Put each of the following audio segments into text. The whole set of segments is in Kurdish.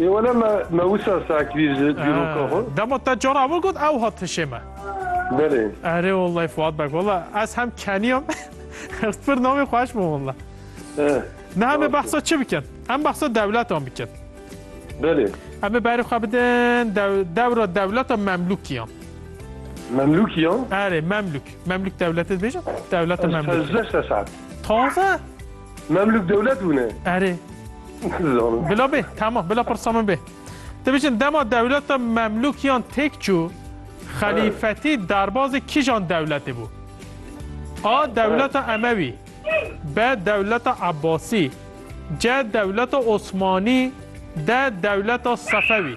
Ê wele me me wisa sakvîr ji dîroka xwe. Dema te cara min got ew hat hişê me. Belê. Erê wallay Fuat beg walla ez hem keniyam ez pir namê xwe eşma walla. Ne hemê behsa çi bikin? Em behsa dewletan bikin. Belê. Em ê berê xwe bidin dewra dewleta Memlûkiyan. Memlûkiyan? Erê Memlûk. Memlûk dewletê dibêjin? Dewleta Memlûk. Ez sezde sesat. Taze? Memlûk dewlet bûne. Erê. Bila bê, tamam, bila pirsa min bê. Dibêjin dema dewleta Memlûkiyan têk çû, xelîfetî derbazê kîjan dewletê bû? A. Dewleta Emewî B. Dewleta Ebasî C. Dewleta Osmanî D. Dewleta Sefewî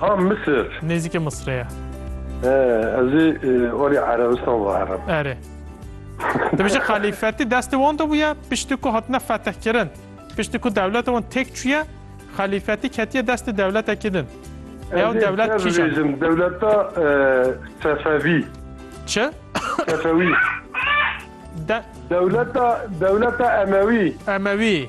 Ha Misir. Nêzîkê Misirê ye. He, ez ê erê Erebistan biherim. Erê. Dibêje xelîfetî destê wan de bûye, piştî ku hatine fetihkirin, piştî ku dewleta wan têk çûye, xelîfetî ketiye destê dewletekî din. Ew Ez ê dewlet te kîjan e? bibêjim, dewleta e, Sefevî. Çi? Sefewî. De Dewleta, dewleta Emewî. Emewî.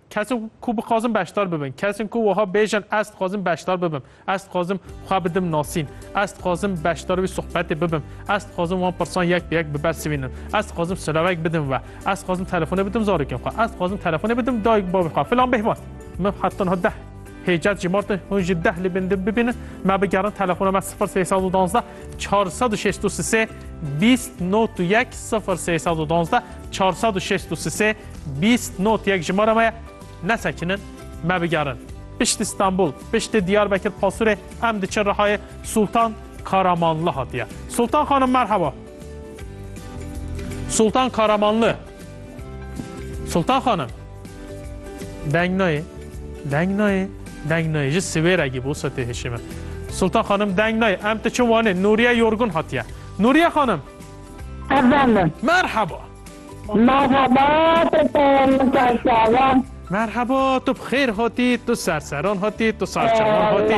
Kesên ku bixwazin beşdar bibin, kesên ku wiha bêjin ez dixwazim beşdar bibim, ez dixwazim xwe bidim nasîn, ez dixwazim beşdar wî sohbetê bibim, ez dixwazim wan pirsan yek bi yek bibersivînim, ez dixwazim silavek bidim we, ez dixwazim telefonê bidim zarokên xwe, ez dixwazim telefonê bidim dayik bavê xwe filan bêhbat. Min heta niha deh hêcet jî martin hûn jî deh li bin din bibînin, me bigerin telefona me sifir sê sed û duwazdeh çar sed û şêst û sisê bîst not û yek sifir sê sed û donzdeh çar sed û şêst û sisê bîst not yek jimara me ye nesekinin me bigerin piştî Stenbul piştî Diyarbekir Pasurê em diçin Rihayê Sultan Karamanlı hatiye Sultan xanim merheba Sultan Karamanlı Sultan xanim. Deng nayê, deng nayê, deng nayê. Ji Siwêregî bû setê hişê min. Sultan xanim deng nayê. Em diçin Wanê. Nûriye yorgun hatiye. Nûriye xanim. Efendim. Merheba. Merheba, tu peyamnike şava. Merheba, tu bi xêr hatî, tu serseran hatî, tu sarçawan hatî.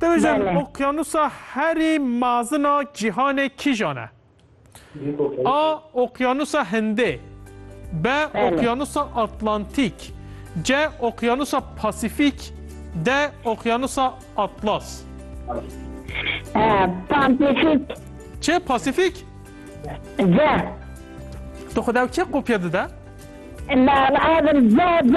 Tevêjin okyanusa herî mazina cîhanê kîjan e? A. Okyanusa Hindê B. Okyanusa Atlantîk C. Okyanusa Pasîfîk D. Okyanusa Atlas Pasîfîk Çê Pasîfîk? C. Tu xwe dew kê kopya dide? Lazim C C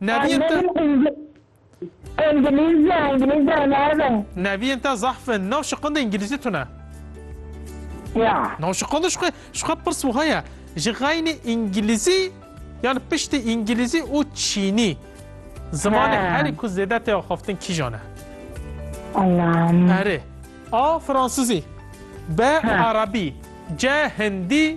Neviyên te. Îngilîzce, îngilîzce navê. Neviyên te zahf in. Nav şiqundê îngilîzî tune. Ya. Nav şiqundê şixwe, şixwe pirs wiha ye. Ji xeynê îngilîzî yan piştî îngilîzî û çînî. Zimanê herî ku zêde tê axaftin kîjan e? Allah'ım. Erê. A. Fransızî B. Arabî C. Hindî